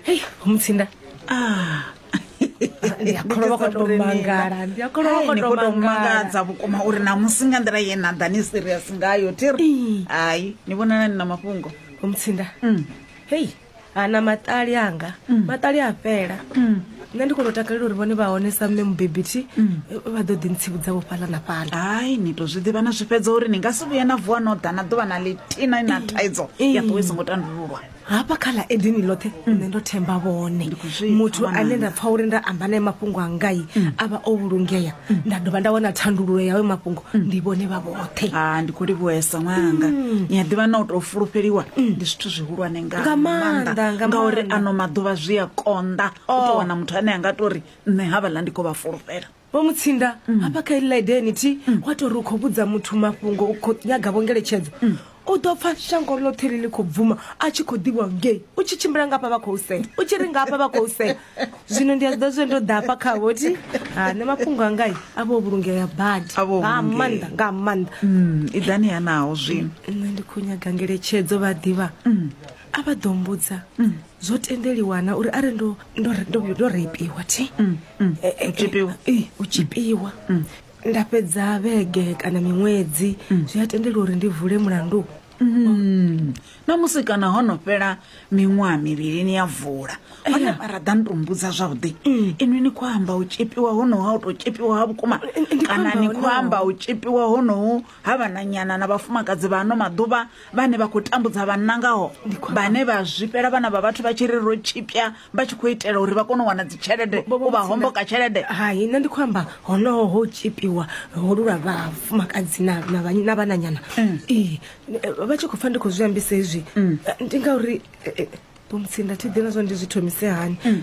hei mutsinda ah. ndiakolovakotomangalandiakolovakotomangadza vhukuma uri namusi nga nḓila ye na ḓa ni serious ngayo tiri hai ni vhonana ni na mafhungo omutsinda mm. hei ana maṱali anga mm. maṱali a fhela mm. nṋe ndi kona u takalela uri vhone vha hone sa mme mubebi thi vha ḓo ḓi ntsivhudzavho fhaḽa na fhaḽa hai ni to zwi ḓivha na zwi fhedza uri ni nga si vhuye na vuwa no ḓa na ḓuvha na ḽithina na thaidzo ya ṱuwe i songo tandululwa hafha kha ḽa edini ḽoṱhe nṋe ndo themba vhone muthu ane nda pfha uri nda amba naye mafhungo a ngai a vha o vhulungea nda dovha nda wana thandululo yawe mafhungo ndi vhone vha vhoṱhe a ndi khou livhuesa ṅwananga ni a ḓivha na u tou fulufheliwa ndi zwithu zwihulwane nga Nga maanḓa, maanḓa nga ngauri maanḓa. ano maḓuvha zwi a konḓa u Oh. tou wana muthu ane a nga to ri nṋe havhaḽa ndi khou vha fulufhela vho mutsinda hafha kha ili ḽaide nithi wa tou ri u khou vhudza muthu mafhungo u khou nyaga vho ngeletshedzo u ḓo pfa shango ḽoṱhe ḽi ḽi khou bvuma a tshi khou ḓivhiwa ngei u tshi tshimbila nga hafha vha khou sea u tshi ri nga hafha vha khou sea zwino ndi a zwi ḓa zwe ndo ḓafha khavho ti ha nṋe mafhungo angai a vho vhulungea badi A vho nga vhulungea. maanḓa nga maanḓa Mm, i ḓani yanaho zwino nṋe ndi khou nyaga ngeletshedzo vha ḓivha a vha ḓo mbudza zwo tendeliwana uri are ndo ndo ndo ndo reipiwa thi Eh, eh, u tshipiwa. eh, u tshipiwa nda fhedza vhege kana miṅwedzi zwi a tendeliwa uri ndi vule mulandu Mm. na musi kana ho no fhela miṅwaha mivhili ni ya vula hone vha raḓa ni to mbudza zwavhuḓi mm. inwi ni khou amba u tshipiwa honoho ha u tou tshipiwa ha vhukuma kana ni khou amba u tshipiwa honoho ha vhananyana na vhafumakadzi vha ano maḓuvha vhane vha khou tambudza vhanna ngaho vhane vha zwifhela vhana vha vhathu vha tshi ri ro tshipya vha tshi khou itela uri vha kone u wana dzitshelede u vha homboka tshelede hai nṋe ndi khou amba honoho ho tshipiwa holu lwa vhafumakadzi na vhananyana mm. ee vha tshi khou pfa ndi khou zwi ambisa hezwi mm. ndi ngauri eh, eh, bomutsinda thi ḓina zwa ndi zwi thomise hani mm.